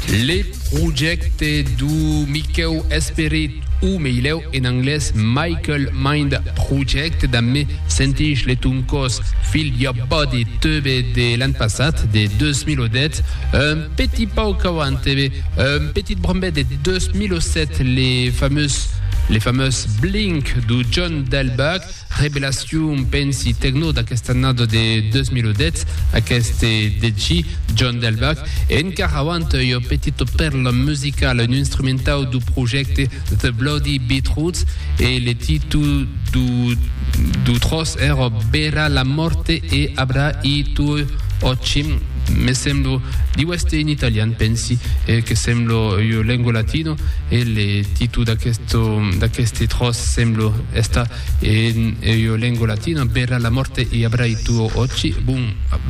Le projècte du Miquèu Esperit, o meilèu en anglés Michael Mind Project, damb Me Sentís le Ton Còs, Feel Your Body Tube de l'an passat, de 2010, un petit pauc auant e un petit brombet de 2007 le famós Blink du John Delbach, Revelacion, pensi, tecno d'aquesta annada de 2010, aqueste DJ, John Delbach, e encara avant ua petita pèrla musicala, un instrumentau dau projècte The Bloody Beetroots, e le titu dau tròç èra Bèra la mòrte e abrà i tuoi òcchi, me semblo, diu èster en italian, pensi, que sembla ua lenga latina, e le titu d'aqueste tròç sembla. Esta e ua lengua latina, bèla la mòrte e abrai tuo òcci. Bon,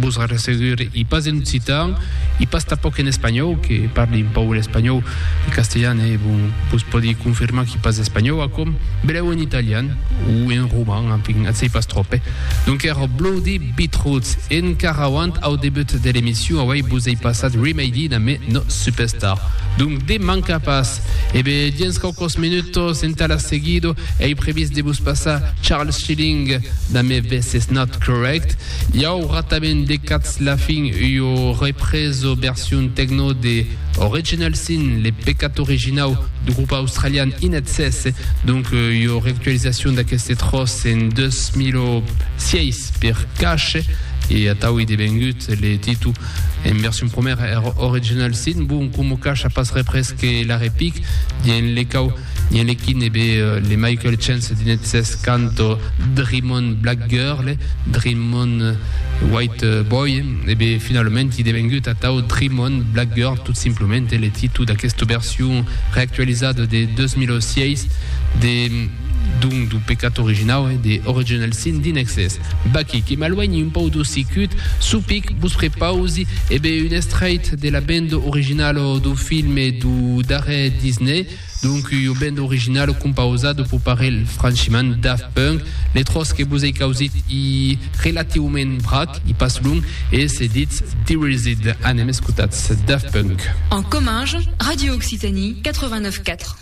vos arressegure, i pas en occitan, i pas tanpòc en espanhòu, que parli un paul espanhòu e castelhan e bon, vos pòdi confirmar qu'i pas espanhòu aquò, belèu en italian o en roman, enfin, ath sei pas tròp, eh? Donques, Bloody Beetroots, en carrauant au debut de l'emission, auei vos ei passat Remade in a Me No Superstar. Donc, de manca pas! E be, dins quauquòs minutos, entà la seguido, ei previst de vos passar Charles Schilling damb e This Is Not Correct. Iau ratament de cats la fin ua represo version techno de Original Sin, le pecat originau du grup australian In Excess, donc ua reactualizacion d'aqueste tròç en 2006 per Cache, e atau ei devengut le titu En version promèra er original sin bon coma cacha pas repres que l'arrepic dien le cau dien le quin e be le Michael Chance dinet ses canto Dreamon Black Girl Dreamon White Boy e be finalament i devengut atau Dreamon Black Girl tot simplement e le titu d'aquesta version reactualizada de 2006 de donc du pecat originau e de original sin dinexes. Vaquí que m'aluenhi un pauc d'ossi cut, supic, vos prepausi, e be, un estraight de la bendo originalo dau filme dau darrèr Disney, donc ua bendo originalo compausada pau parelh franchiment Daft Punk, le tròç que vos ei causit i relatiument vrac, i pas long, e se ditz Dereased. Anem escotatz Daft Punk. En comminge, Radio Occitanie 89 4.